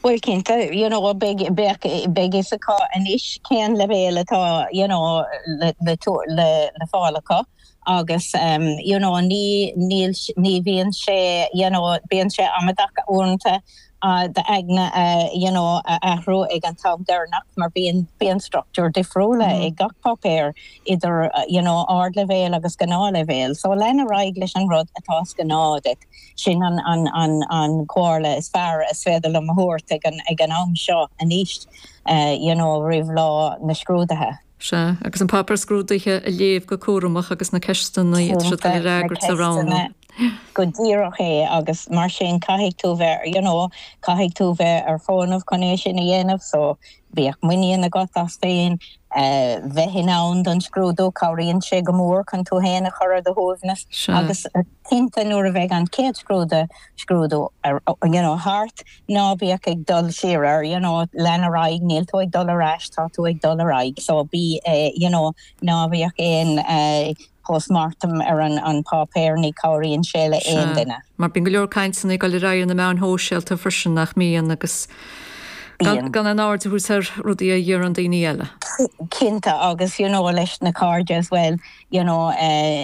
Bhuel, cinnte, you know beidh, bheadh, beidh fhios acu anois cén leibhéal atá you know le, le tabhairt, le, le fáil acu agus ehm you know ní, níl, ní bhíonn sé you know, bíonn sé amadactha uaireanta d'aigne a you know a athrú ag an t-am deireanach mar bíonn, bíonn structúir difriúla ag gach páipéar idir you know ardleibhéal agus gnáthleibhéal so lean ar aghaidh leis an rud atá is gnáth duit. Sin an chomhairle is fearr is féidir liom a thabhairt ag an am seo anois you know roimh lá na scrúdaithe. Sea, agus an páipéar scrúdaithe a léamh go cúramach agus na ceisteanna atá siad ag freagairt, a roghnú. Go díreach é agus mar sin caithfidh tú bheith you know caithfidh tú bheith ar fónamh chun é sin a dhéanamh so Bíodh muinín agat as féin. Bheith in ann don scrúdú, cabhraíonn sé go mór chun tú féin a chur ar do shuaimhneas agus cinnte nuair a bheidh an chéad scrúdú, scrúdú you know thart, ná bhíodh ag dul siar ar you know lean ar aghaidh, níl tú ag dul ar ais, tá tú ag dul ar aghaidh so bí eh you know ná bhíodh aon eh, post mortem ar an páipéar, ní cabhraíonn sé le haon duine. Sea. Mar bíonn go leor cainteanna ag dul ar aghaidh ar na meáin shóisialta freisin, nach mbíonn? Agus gan aon aird a thabhairt ar rudaí a deireann daoine eile. Cinnte. Agus you know leis na cairde as well, you know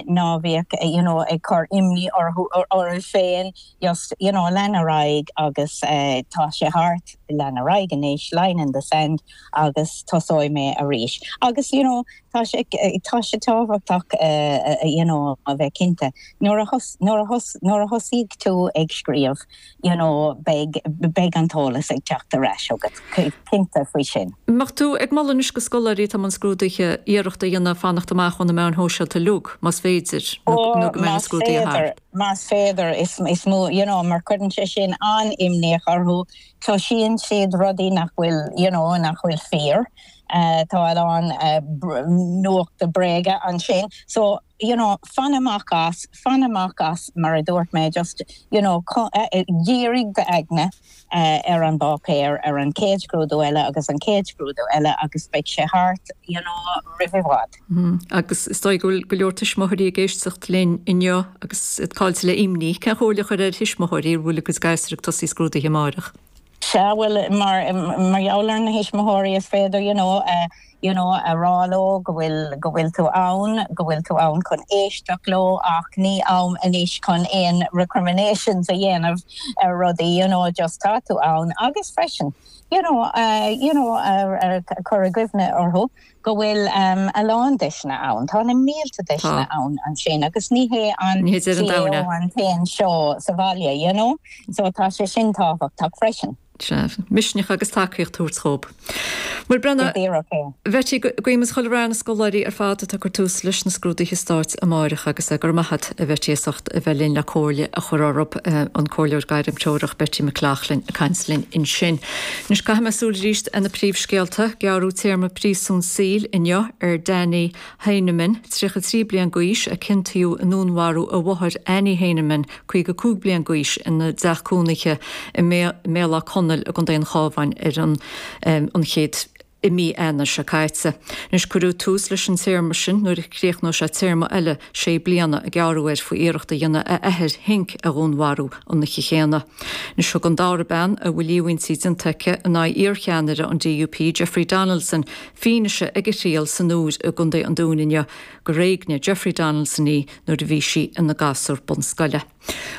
ná bíodh you know ag cur imní orthu, oraibh féin, just you know lean ar aghaidh agus tá sé thart, lean ar aghaidh anois, line in the sand, agus tosóidh mé arís. Agus you know Tá sé tábhachtach a bheith cinnte nuair a thosaíonn tú ag scríobh, beidh an t-eolas ag teacht ar ais chugat, cinnte faoi sin. Bheadh tú ag moladh anois do scoláirí atá i mbun scrúduithe iarracht a dhéanamh fanacht amach ó na meáin shóisialta uilig, más féidir, nó go mbeidh na scrúduithe thart. Más féidir, you know, you know, mar cuireann sé sin an-imníoch orthu, cloisíonn siad rudaí nach bhfuil, you know, nach bhfuil fíor. tá a lán nuachta bréaga ansin so you know fan amach as, fan amach as mar a dúirt mé just you know dírigh d'aigne ar an bpáipéar, ar an chéad scrúdú eile agus an chéad scrúdú eile agus beidh sé thart you know roimh i bhfad. Agus is dóigh go bhfuil go leor tuismitheoirí ag éisteacht linn inniu agus iad caillte le imní, cén chomhairle a chuirfeá ar thuismitheoirí a bhfuil a gcuid gasúr ag tosaí scrúduithe amárach? Sea, bhuel, mar gheall ar na thuismitheoirí is féidir, you know, you know a rá leo go bhfuil, go bhfuil tú ann, go bhfuil tú ann chun éisteacht leo ach ní am anois chun aon recriminations a dhéanamh ar rudaí, you know, just tá tú ann agus freisin, you know, you know a chur i gcuimhne orthu. go bhfuil a lán deiseanna ann, tá na mílte deiseanna ann ansin agus ní hé an CAO an t-aon seó sa bhaile you know so tá sé sin tábhachtach freisin. Sea. Misneach agus tacaíocht a thabhairt dhób. Maire Brenna, Bheití, guímis chuile rath ar na scoláirí ar fad atá ag cur tús leis na scrúduithe stáit amáireach agus go raibh maith a't a Bheití as ucht a bheith linn le comhairle a chur orthub, an Comhairleoir Gairmthreorach Beití McLoughlin ag caint linn ansin. Anois caithfimid súil arís ar na príomhscéalta, gearradh téarma príosúin saoil inniu ar Danny Heyneman, 33 bliain d'aois, a ciontaíodh i ndúnmharú a mháthar Annie Heyneman, 55 bliain d'aois, ina dteach cónaithe i mBéal Átha Conaill i gcontae an Chabháin ar an 1ú. i mí Eanáir seo caite. Anois, cuirfear tús leis an téarma sin nuair a chríochnóidh sé téarma eile sé bliana a gearradh air faoi iarracht a dhéanamh a athair Henk a dhúnmharú an oíche chéanna. Anois, thug an dara bean, a bhfuil líomhaintí déanta aici in aghaidh iarcheannaire an DUP, Jeffrey Donaldson, fianaise ag a thriail san Iúr i gContae an Dúin inniu gur éignigh Jeffrey Donaldson í nuair a bhí sí ina gasúr bunscoile.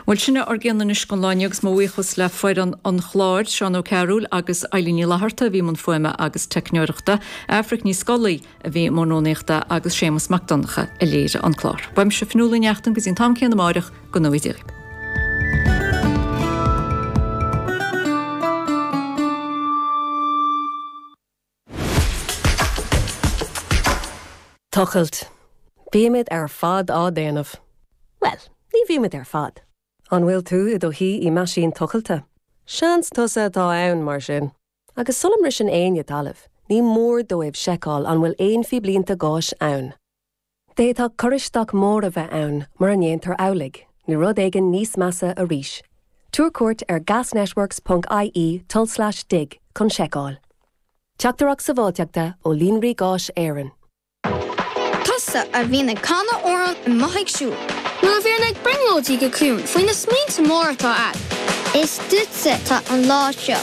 Bhuel, sin é ár gcion anois don lá inniu agus mo bhuíochas le foireann an chláir, Seán Ó Cearúil agus Eilín Ní Fhlatharta a bhí i mbun fuaime agus teicneoireachta, Aifric Ní Scolaí a bhí i mbun rúnaíochta agus Séamas Mac Donncha a léirigh an clár. Uaimse, Fionnuala Ní Neachtain, go dtí an t-am céanna amárach, go ngnóthaí Dia. Tochailt, Bímid ar fad á déanamh. Bhuel, ní bhímid ar fad. An bhfuil tú i do shuí i meaisín tochailte? Seans tusa atá ann, mar sin. Agus sula mbriseann éinne talamh, ní mór dóibh seiceáil an bhfuil aon phíblínte gáis ann. D'fhéadfadh cur isteach mór a bheith ann, mura ndéantar amhlaidh, nó rud éigin níos measa arís. Tabhair cuairt ar gasnetworks.ie tulslais dig chun seiceáil. Teachtaireacht Sábháilteachta ó Líonraí Gáis Éireann. Tusa a bhíonn ag canadh amhráin amuigh ag siúl. Nó a bhíonn ag brionglóidí go ciúin faoi na smaointe móra atá agat. Is duitse atá an lá seo.